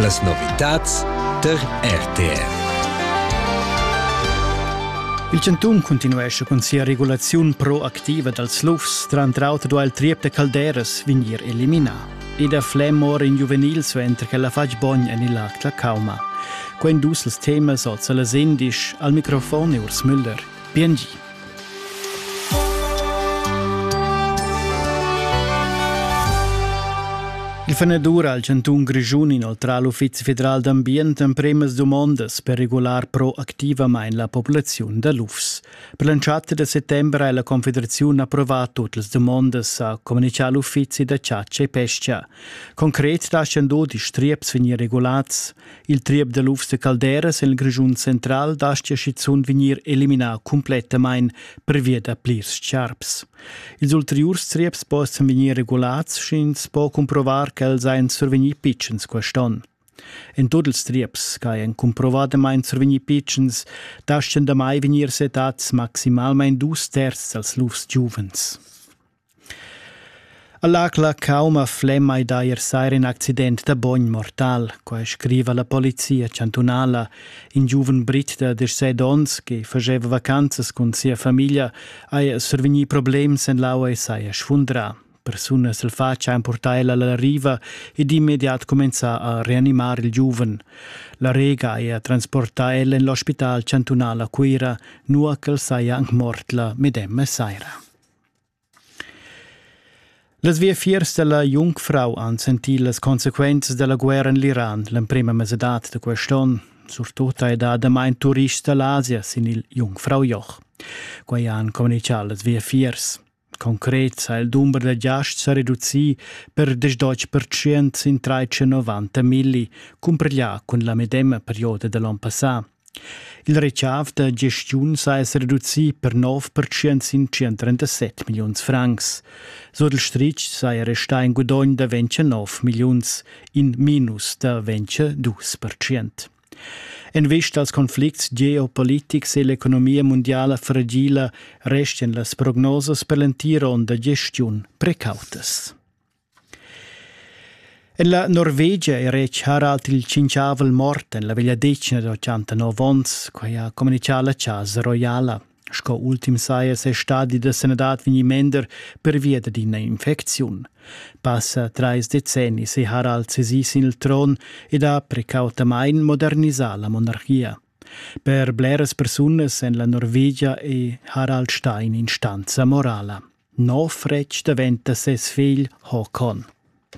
Las novitads tar RTR. Il chantun cuntinuescha cun sia regulaziun proactiva dals lufs. Tranter auter ha il triep da calderas vegnir eliminà. Ed a Flem ora in giuvenil suenter ch'el ha fatg bogn en il lac da Cauma. Quai dus els temas oz a las indisch al microfon e Urs Müller. PNG. Il fenedur al chantun Grischun inoltrà l'Uffizi federal d'ambient empremas dumondas per regular proactivamain la populaziun da lufs. Per l'entschatta da settembre ha la Confederaziun approvà tutte le domande, ha comunicato l'Uffizi da chatscha e pesca. Concret lascian dod i striaps vegnir regulats. Il triep da lufs da calderas en il Grischun central dastia schizunt vegnir eliminà cumplettamain pervia da plirs charps. Ils ulteriurs trieps possan vegnir regulads, sch'ins po cumprovar ch'els ein survegnì pitschens quest'onn. En tut ils trieps ch'hajan cumprovadamain survegnì pitschens, daschian damai vegnir settads maximalmain dus terzs dals lufs giuvens. All'acla cauma flemmai d'eir sair ün accident da bogn mortal, quai scriva la polizia chantunala. In giuven brit da 17 ons che fageva vacanzas cun sia famiglia haja survegnì problems en l'aua e saja sfundrà. Persunas al facian purtar el alla riva ed immediat cumenzà a reanimar il giuven. La Rega haja transportà el en l'ospital chantunal a Cuira, nua ch'el saja anc mort la medemma saira. Las viafiers dalla Jungfrau han sentì las consequenzas dalla guerra en l'Iran l'emprema mesadad da quest onn. Surtut hai dà damain turists da l'Asia sin il Jungfraujoch. Quai han communitgà las viafiers. Concret ha il dumber da giasts sa reducì per 18% sin 390 milli, cumparglià cun la medema perioda da l'onn passà. Il retschaf da gestiun sa esser reducì per nov pertschient sin 137 milliuns francs. Sur il stritg saja restà in gudogn da 29 milliuns, in minus da 22 pertschient. En vista als conflicts geopolitics e l'economia mundiala fragila restien las prognosas per l'entira onda gestiun precautas. En la Norvegia è retg Harald il tschinchavel mort en la vegliadetgna da 89 onns, quai ha communitgà la Chasa Royala. Sco ultim saja ses stadi da sanadad vegnì mender pervia dad ina infecziun. Passa trais decennis è Harald sesì sin il tron ed ha precautamain modernisà la monarchia. Per bleras persunas en la Norvegia è Harald Stein instanza morala. Nov retg daventa ses figl Håkon.